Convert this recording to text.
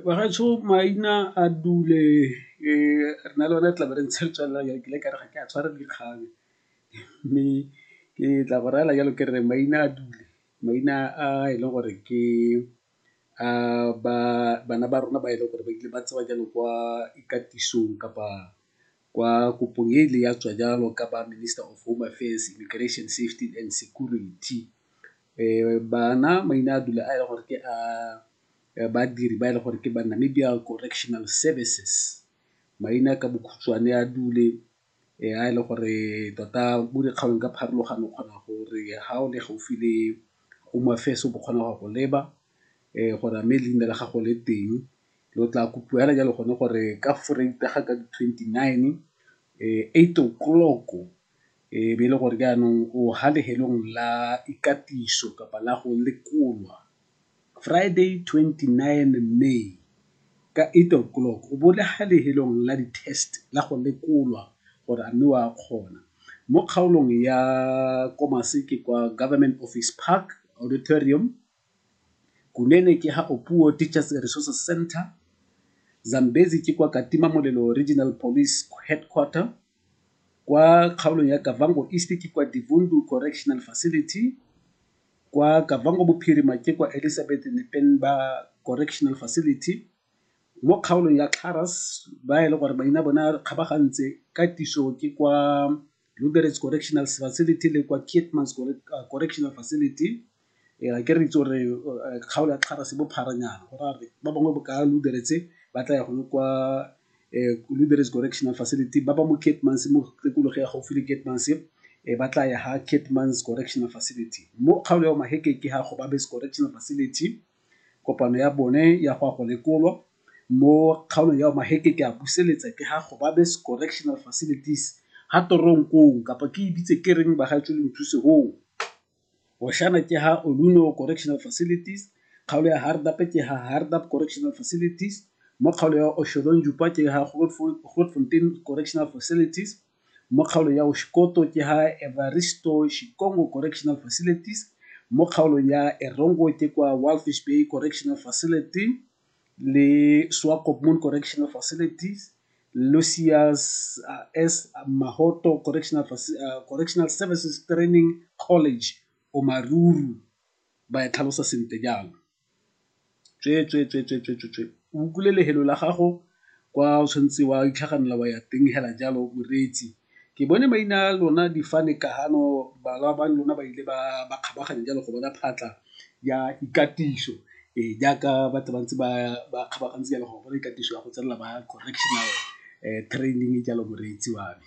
Bagaetsho maina a dule re na le one tlabe re ntshe tswelela jalo ke ile ka re ga ke a tshwara dikgang mme ke tla go rayela jalo ke re maina a dule, maina a e leng gore ke a bana ba rona ba e leng gore ba ile ba tsewa jalo kwa ikatisong kapa. Kwa kopong e e ileng ya tswa jalo ka ba Minister of Home Affairs, Immigration, Safety and Security bana maina a dula a e le gore ke a badiri ba e le gore ke ba Namibia Correctional Services. Maina ka bokhutshwane a dule a e le gore tota mo dikgaolong ka pharologano o kgona gore ha o le gaufi le Home Affairs o bo kgona go ya go leba gore a mme leina la gago le teng. lo tla kopiwa hela jalo gone gore ka foreita ga ka di-twenty nine eight o'clock e be e le gore jaanong o ha lehelong la ikatiso kapa la go lekolwa Friday twenty nine May ka eight o'clock o bo le ha lehelong la di-test la go lekolwa gore a mme o a kgona. Mo kgaolong ya ko maseke kwa government office park auditorium Kunene ke ha Opuwo Teachers Resources Centre, Zambezi ke kwa Katima Molelo Regional Police Headquarter, kwa kgaolong ya Kavango East ke kwa Divundu Correctional Facility, kwa Kavango Bophirima ke kwa Elizabeth Nepenba Correctional Facility, mo kgaolong ya Xaras ba e le gore maina bona kgabagantse ka tiso ke kwa Lubberets Correctional Facility le kwa Keetmans Correctional Facility. Ee, a ke re itse gore kgaolo ya Kgara se bophara nyana, go raya gore ba bangwe bo ka Luderetse ba tla ya gone kwa Luderetse Correctional Facility, ba ba mo Keetmans's mo tikologo ya gaufi le Keetmans's ba tla ya ha Keetmans's Correctional Facility. Mo kgaolo ya Maheke ke ha Gobabis Correctional Facility, kopano ya bone ya go ya go lekolwa. Mo kgaolong ya Maheke ke a buseletsa ke ha Gobabis Correctional Facilities ha Toronkong kapa ke e bitse ke reng bagaetsho le nthuse hoo. Boshana ke ha Oluno Correctional Facilities, kgaolo ya Hardap ke ha Hardap Correctional Facilities, mo kgaolo ya Osholontjupa ke ha Grootfontein Correctional Facilities, mo kgaolo ya Oshikoto ke ha Evaristo Shikongo Correctional Facilities, mo kgaolo ya Erongo ke kwa Walvis Bay Correctional Facility. le Swakopmund Correctional Facilities, Lucius S. Mahoto Correctional Services Training College, Omaruru, ba e tlhalosa sentle jalo. Tsweetswee, tsweetswee, tsweetswee, tsweetswee. O bukule lehelo la gago kwa o tshwanetse wa itlhaganela wa ya teng hela jalo, moreetsi. Ke bone maina a lona difane kahano balwa ba lona ba ile ba ba kgabaganya jalo go bona phatla ya ikatiso e jaaka batho ba ntse ba ba kgabagantse jalo go bona ikatiso ya go tsenela ba correctional training jalo moreetsi wa me.